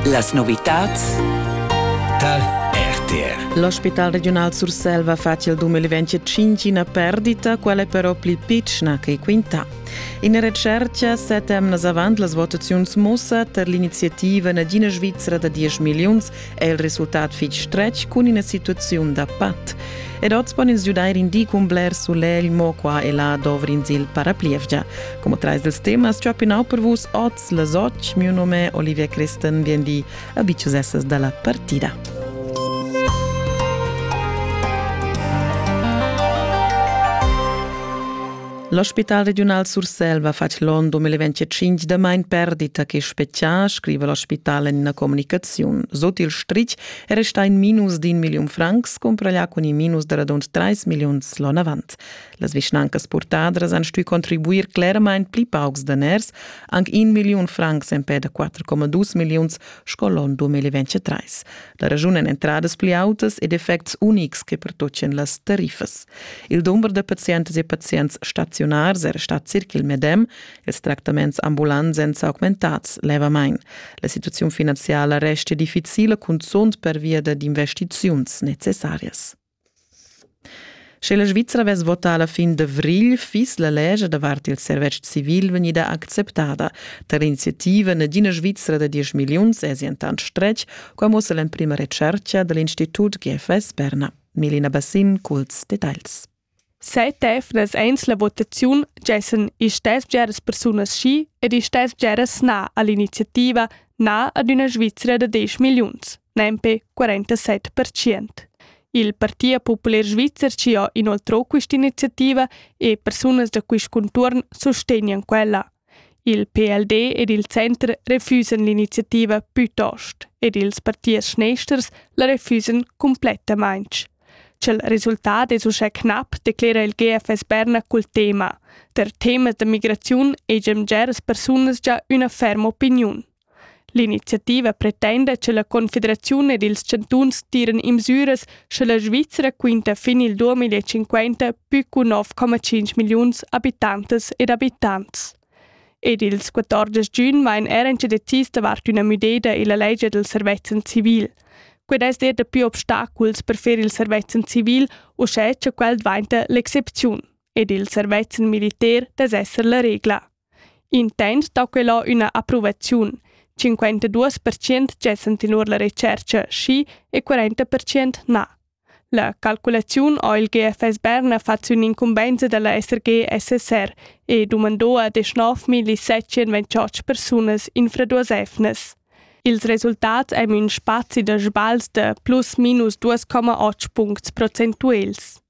Las novitads tar RTR. L'ospital regiunal Surselva facia il 2025 una perdita, quella è però pli piccina che quinta. In recerca sette emnas avant las votaziuns mussa ter l'iniziativa Nagina Svizzera da 10 milliuns è il resultat fitg stretg cun ina situaziun da pat. Ed oz pon ins giudair in di cun bler sulegl, mo qua e là dovrins il paraplievgia. Come trais dels temas ciò pinau per vus oz les oc, mio nome Olivia Christen vien di abiciusessas dalla partida. L'ospital regiunal Surselva ha fatg l'on 2025 damain perdita che spetgà, scriva l'ospital en ina communicaziun. Sut il stritg è restà in minus d'in milliun francs, cumprà cun in minus da radund 3 milliuns l'on avant. Las vischnancas purtadras han stuì contribuir clermain pli paucs daners, anc in milliun francs empè da 4,2 milliuns sco l'on 2023. da raschun en entradas pli autas ed effects unics che pertocchen las tariffas. Il dumber da pazientas e pazients staziunars era stat circa il medem, ils tractaments ambulants èn s'augmentads levamain. La situaziun finanziala resta difficila, cunzunt pervia dad investiziuns necessarias. Sche la Svizra vess votà la fin d'avrigl, fiss la lescha davart il servetsch civil vegnida acceptada. Tar iniziativa Nagina Svizra da diesch milliuns èsi entant stretg, qua mussa l'emprima retschertga da l'Institut GFS Berna. Melina Bassin, culs detagls. Set efnas eins la votaziun gessan istess bgeras persunas schi ed istess bgeras na all'iniziativa na ad üna Svizra da 10 milliuns, nempe 47%. Il Partia Popular Svizzer ci ha inoltrò quest'iniziativa e persunas da quist contuorn sustegnan quella. Il PLD ed il Center refusan l'iniziativa plütost ed ils partiers schnesters la refusan complettamainch. Cha'l resultat es uschè knap declera il GFS Berna cul tema Der temas da migraziun hegian bgeras persunas già üna ferma opiniun. L'iniziativa pretenda che la Confederaziun ed ils chantuns tiran in misüras sche la Svizra quinta fin il 2050 pü cu 9,5 milliuns abitantas ed abitants. Ed ils 14 giun vain er incedetis davart üna müdeda illa legia del servezzan civil. Quid es er dapi obstaculs per fer il servezzan civil uschè cha quel dvainta l'excepziun ed il servezzan militar dess esser la regla. Intent dà quello üna approvaziun. 52% gessan tenor la retschercha schi e 40% na. La calculaziun ho il GFS Berna fat sün incumbenza da la SRG SSR e dumandò a 19.728 persunas infraduosevnas. Ils resultats ein ün spazi da sbagls da plus minus 2,8 puncts procentuels.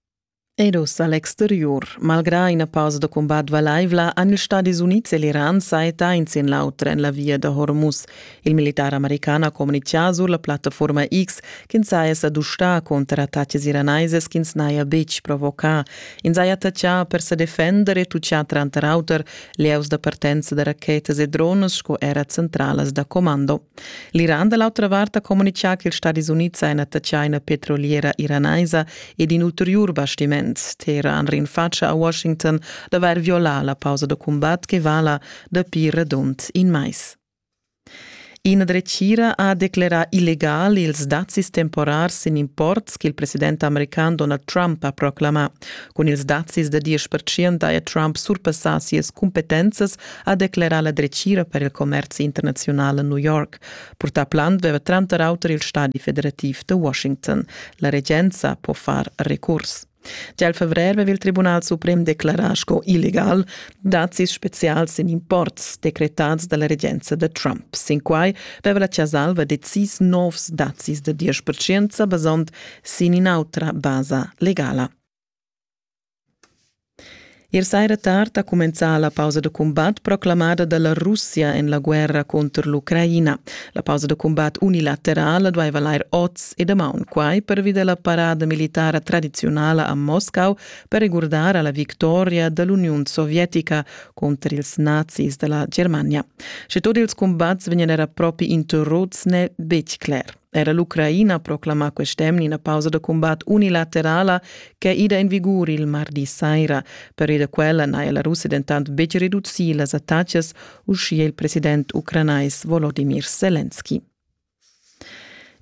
Ed ussa l'exteriur. Malgrà ina pausa da cumbat valaivla han ils Stadis Unids e l'Iran sajettà in sin l'auter en la via da Hormuz. Il militar american ha communitgà sur la plattaforma X ch'ins saja sa dustà cunter attaccs iraneses ch'ins n'haja betg provocà. Ins haja attachà per sa defender e tutgà tranter auter lieus da partenza da rachetas e drones sco era centralas da commando. L'Iran da l'autra vart ha communitgà ch'ils Stadis Unids èn attachà ina petroliera iranaisa ed in ulteriur bastiment. Teheran rinfatscha a Washington d'avair violà la pausa da cumbat che vala dapi radund in mais. Ina dretgira ha declerà illegal ils dazis temporars sin imports ch'il president american Donald Trump ha proclamà. Cun ils dazis da 10% haja Trump surpassà sias cumpetenzas ha declerà la dretgira per il commerzi internaziunal a New York. Purtà Plant veva tranter auter il stadi federativ de Washington. La regenza può far recurs. Già il fevrer aveva il Tribunal Suprem declarà sco illegal dazis specials in imports decretats dalla regenza da Trump. Sin quai aveva la Ciasalva decis novs dazis da 10% basond sin in'autra basa legala. Ier saira tard ha cumenzà la pausa da cumbat proclamada da la Russia en la guerra cunter l'Ucraina. La pausa da cumbat unilaterala dueva lair oz e damaun quai pervi da la parada militara tradiziunala a Moscau per regurdar a la victoria da l'Uniun sovietica cunter ils nazis da la Germania. Sche tut ils cumbats vegnan era propi interruts n'è betg cler. Era l'Ucraina proclama quest'emna ina pausa da cumbat unilaterala ch'è ida en vigur il mardi saira. Per ida quella n'haja la Russia dentant betg reducì las attacas, uschia il president ucranais Volodimir Selenski.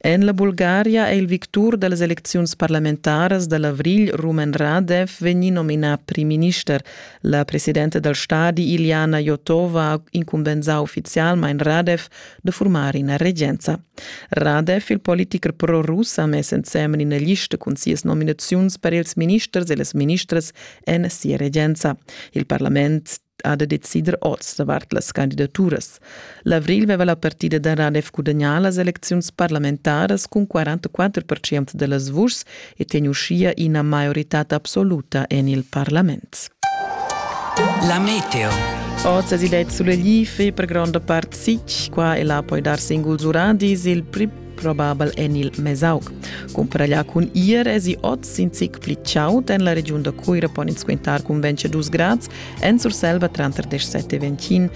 En la Bulgaria è il victur da las elecziuns parlamentaras da l'avrigl Rumen Radev vegnì nominà primminister. La presidenta dal stadi Iljana Jotova ha incumbensà uffizialmain Radev da furmar ina regenza. Radev, il politicher pro-rus, ha mess ensemen ina lista cun sias nominaziuns per ils ministers e las ministras en sia regenza. Il parlament ha da decider oz davart las candidaturas. L'avrigl veva la partida da Radev gudagnà las elecziuns parlamentaras cun 44% da las vuschs e tegn uschia ina maioritad absoluta en il parlament. La meteo. Oz es idee sulegli fe per gronda part sich, qua e là puoi dar singuls uradis, il pli probabel en il Mesaug. Cumparaglia cun ir es i oz in zic pli chaud en la regiun da Cuira pon ins quintar cun 22 grads en Surselva tranter 17 e 21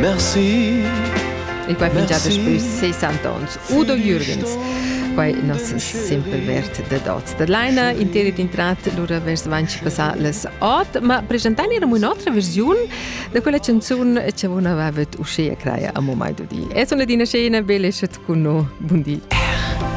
Merci. E quai fin già daspö 60 ans. Udo Jürgens. Quai nos simpel vert da dots da laina interit intrat lura vers avanti passà las ot, ma presentani eram un'otra versiun da quella canzun che avon aveva uschea creia a momai di. Es una dina scena bellescet con no. Bundi.